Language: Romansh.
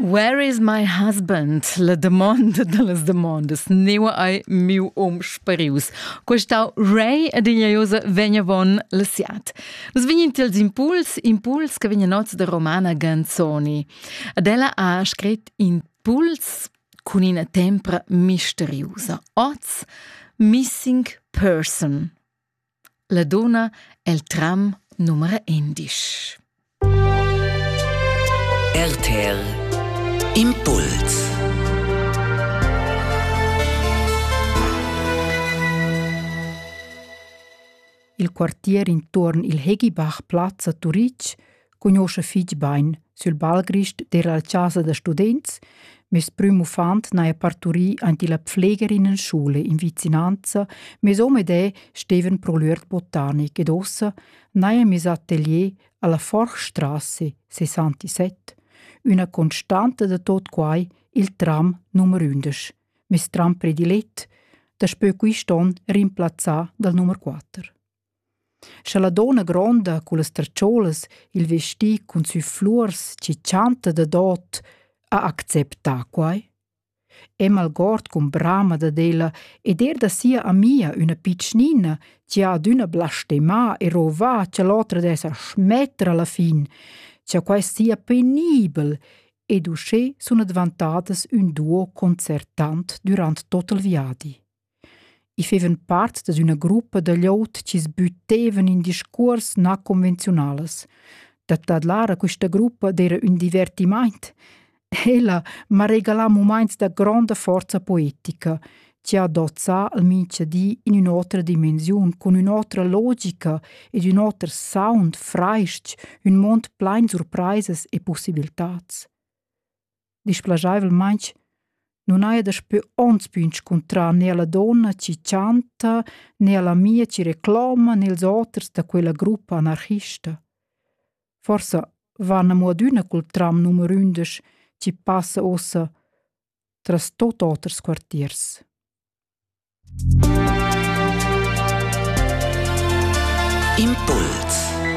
Where is my husband? La domanda da las domandas. Neu ei miu um sparius. Questau Ray ed ignoiosa vegnavon la siat. Nus vegnin tils impuls, impuls che vegnan oz da Romana Ganzoni. Ad ella ha scrit impuls cun ina tempra misteriusa. Oz, missing person. La dunna el tram numera indisch. RTL Impuls Il quartier intuorn il Heghibach Plaza Turitg cugnuoscha fich bain sül balgrist d'eir la chasa da students, meis prüm uffant n'haja parturì aint illa pfleger in ün scoula in vicinanza, meis hom ed eu stevan pro l'üert botanic ed uossa n'haja miss atelier alla Forchstrasse 67, üna constanta da tot quai il tram numer 11, meis tram predilet, daspö quist on rimplazzà dal numer 4. Sche la donna gronda cullas tertschoulas il vesti cun sü fluors chi chanta dadot ha acceptà quai. Emma algord cun brama dad ella ed eir da sia amia üna pitschnina chi ha adüna blastemà e rovà cha l'otra dess schmetter alla fin, cha quai sia penibel ed uschè sun advantadas ün duo concertant dürant tot il viadi. I fevan part da üna gruppa da glieud chi's büttevan in discuors na convenziunalas. Da tadlar a quista gruppa d'eira ün divertimaint. Ella m'ha regalà mumaints da gronda forza poetica, chi ha dozzà al mincha di in ün'otra dimensiun, cun ün'otra logica ed ün oter sound, frais-ch, ün mond plain surpraisas e pussibiltats. displegaivelmaing nun haja daspö ons pü inscuntrà ne alla donna chi chanta, ne alla mia chi recloma, nels oters da quella gruppa anarchista. Forsa van amo adüna cul tram numer ündesch chi passa ossa tras tot oters quartiers. Impuls